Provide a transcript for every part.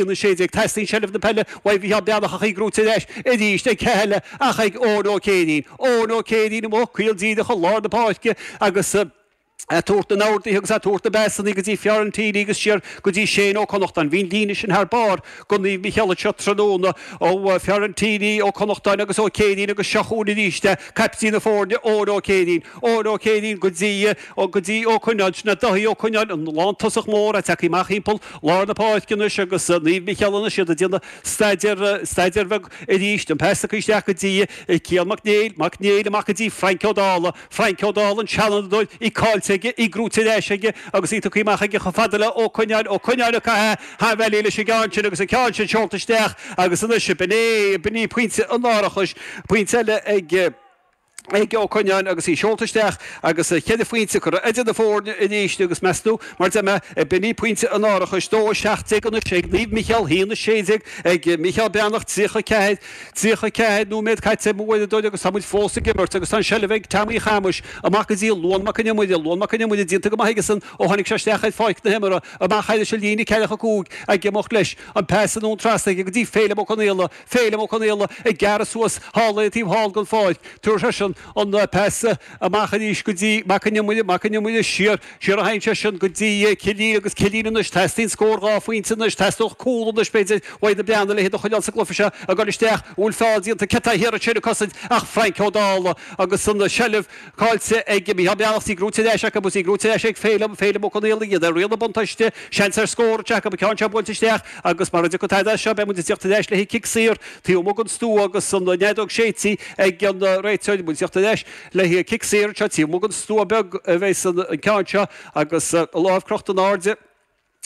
Aon 16 Teastaíonn seilbh na peile uaidh Mhícheál Breathnach agus í gnóite ar ais arís a chéile ach ag Eoin Ó Céirín. Eoin Ó Céirín amuigh, caol díreach chun lár na páirce agus é ag tabhairt na n-orduithe agus é ag tabhairt na bpasanna go dtí Fiorentini agus siar go dtí Shane Ó Connachtáin. Bhí an líne sin thar barr do Naomh Micheál anseo tráthnóna ó Fiorentini, Ó Connachtáin agus Ó Céirín agus seo chugainn arís é, caiptín na foirne, Eoin Ó Céirín. Eoin Ó Céirín go dtí. Ó go dtí Ó Coinneáin. Sin é Dáithí Ó Coinneáin, an lántosach mór atá tagtha amach thimpeall lár na páirce anois agus Naomh Micheál anois, iad ag déanamh staidéar, staidéar beag arís, an pas acu isteach go dtí Cian Mac Néill, Mac Néill amach go dtí Frainc Ó Dála, Frainc Ó Dála, an seanfhondúir, í caillte aige, í gnóite ar ais aige agus í tugtha amach aige chomh fada le Ó Coinneáin, Ó Coinneáin ag caitheamh thar bealaigh leis an gceann sin agus an ceann sin seolta isteach agus anois b'in é, b'in é pointe an árachais, pointe eile ag. Aodh Ó Coinneáin agus í seolta isteach agus cheithre phointe curtha idir na foirne arís agus meas tú mar a déarfá ab in é pointe an árachais 2 17 anois ag Naomh Micheál, 1 16 ag Micheál Breathnach, 34, 34 nóiméad caite ag m'uaireadóir agus tá muid fós ag imirt agus tá an seilbh ag Tommy Chamais amach go dtí Luan Mac Con Iomaire, Luan Mac Con Iomaire déanta go maith aigesan ó tháinig sé isteach ar pháirc na himeartha, amach thar an líne 45 ag imeacht leis, an pas anonn trasna aige go dtí Féilim Ó Conaola, Féilim Ó Conaola ag gearradh suas thall ar an taobh thall den pháirc. Tabharfaidh seisean an pas amach arís go dtí Mac an Iomaire. Mac an Iomaire siar. Siar a théann seisean go dtí Killeen agus Killeen anois. Teastaíonn scór dhá phointe anois. Teastódh cúl anois b'fhéidir uaidh na Breathnaigh. A leithéid de chuinneal sa gcluiche seo a gcur isteach. An bhfuil feall déanta? Cé atá thiar ansin ag cosaint ach Frainc Ó Dála agus an seilbh. Caillte ag Micheál Breathnach, í gnóite ar ais acu agus í gnóite ar ais ag Féilim, Féilim Ó Conaola, iad ar riail an bhuntáiste, seans ar scór anseo acu, an ceann seo buailte isteach agus mara dtiocfaidh tada as seo beidh muid ag teacht ar ais le cic saor taobh amuigh den stua agus an fheadóg séidte ag an réiteoir, muid ag teacht ar ais le cic saor anseo taobh amuigh den stua beag a bheas an ceann seo agus a lámh crochta in airde.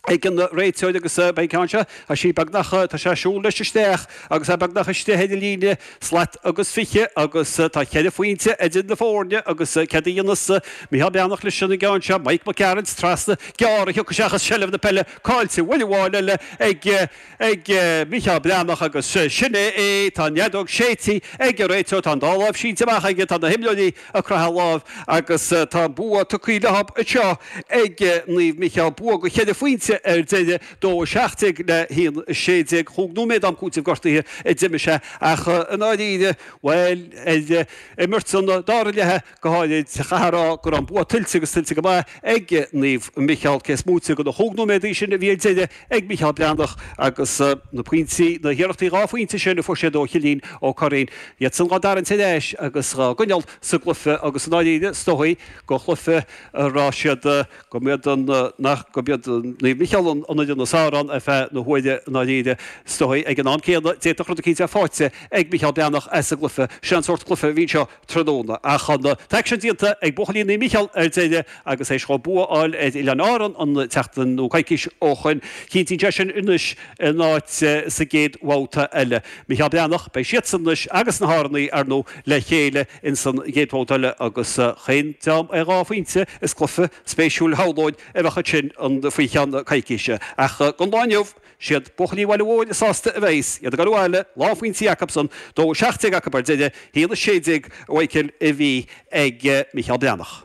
ag an réiteoir agus beidh an ceann seo, tá sí beagnach, tá sé ag siúl leis isteach agus é beagnach istigh ar an líne, slat agus fiche agus tá ceithre phointe idir na foirne agus céard a dhéanfas Micheál Breathnach leis an gceann seo, Mike Mac Gearailt trasna, gearr a thiocfaidh seachas seilbh na peile caillte, babhta amháin eile ag. ag Micheál Breathnach agus sin é é, tá an fheadóg séidte ag an réiteoir, tá an dá láimh sínte amach aige, tá na himreoirí ag croitheadh lámh agus tá an bua tugtha leo anseo ag Naomh Micheál, bua de cheithre phointe ar deireadh, 2 17 le 1 16. Chúig nóiméad am cúitimh gortaithe a d'imir sé ach i ndáiríre, bhuel, ar imirt an dara leath, go háirid sa chathair, á, go raibh an bua tuillte agus tuillte go maith ag Naomh Micheál, cé is móite de na chúig nóiméadaí sin a bhí ar deireadh ag Micheál Breathnach agus na pointí, na hiarrachtaí dhá phointe sin a fuair siad ó Chillín Ó Curraoin, iad san dhá dtarraingt ar ais agus dhá gcoinneáil sa gcluife agus i ndáiríre, is dóigh gur chluife a raibh siad, go mb'iad an, nach, go mb'iad Naomh Micheál an fhoireann ab fhearr ar feadh na huaire i ndáiríre, is dóigh. Ag an am céanna, d'fhéadfadh rud eicínt bheith fáighte ag Micheál Breathnach as an gcluife, sin an sórt cluife a bhí anseo, tráthnóna. Ach an t-aicsean déanta ag buachaillí Naomh Mícheál ar deireadh agus th'éis dóibh bua a fháil ar Oileáin Árann an tseachtain nó coicís ó shoin, cinntíonn sé sin anois a n-áit sa gcéad bhabhta eile. Mícheál Breathnach, beidh siadsan anois agus na hÁrannaigh, ar ndú, le chéile ins an gcéad bhabhta eile agus chaon dream ar dhá phointe is cluiche spéisiúil shamhlóinn a bheadh ansin faoi cheann coicíse. Ach don lá inniu. siad buachaillí an bhaile mhóir sásta a bheas siad ag dul abhaile lán phointí acusan, a dó 17 acu ar deireadh a haon 16, a Mhichíl, a bhí ag Micheál Breathnach.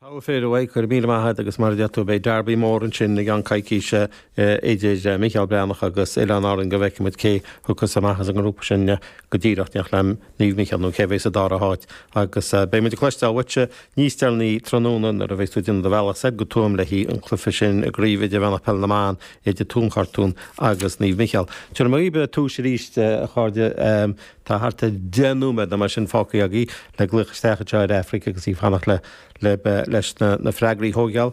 Togha fir thú, go raibh míle maith agat agus mar a deir tú beidh derby mór ansin i gceann coicíse idir Micheál Breathnach agus Oileáin Árann go bhfeicimid cé a thiocfas amach as an ngrúpa sin go díreach, in éineacht le Naomh Micheál nó cé a bheidh sa dara háit agus beidh muid ag cloisteáil uaitse Níos deireanaí tráthnóna, nuair a bheidh tú ag déanamh do bhealaigh soir go Tuaim le haghaidh an chluiche sin i gCraobh Idirmheánach Peil na mBan idir Tuaim Chartúin agus Naomh Micheál. Go raibh maith agatsa arís. A chairde, tá thart ar 10 nóiméad nó mar sin fágtha agaibh le glaoch isteach anseo ar Aifric agus í ag fanacht libh leis na freagraí a thóigeáil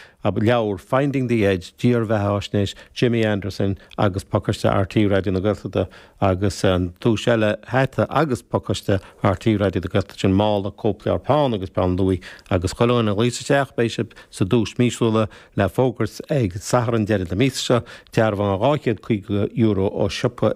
an leabhar Finding the Edge, dírbheathaisnéis Jimmy Anderson agus pacáiste RTÉ Raidió na Gaeltachta agus an duais eile hata agus pacáiste RTÉ Raidió na Gaeltachta sin mála cóipleabhar peann agus peann luaidh agus chuile dhuine a ghlaos isteach beidh sibh sa duais míosúil atá le fógairt ag Satharn deiridh na míosa seo dearbhán €250 ó siopa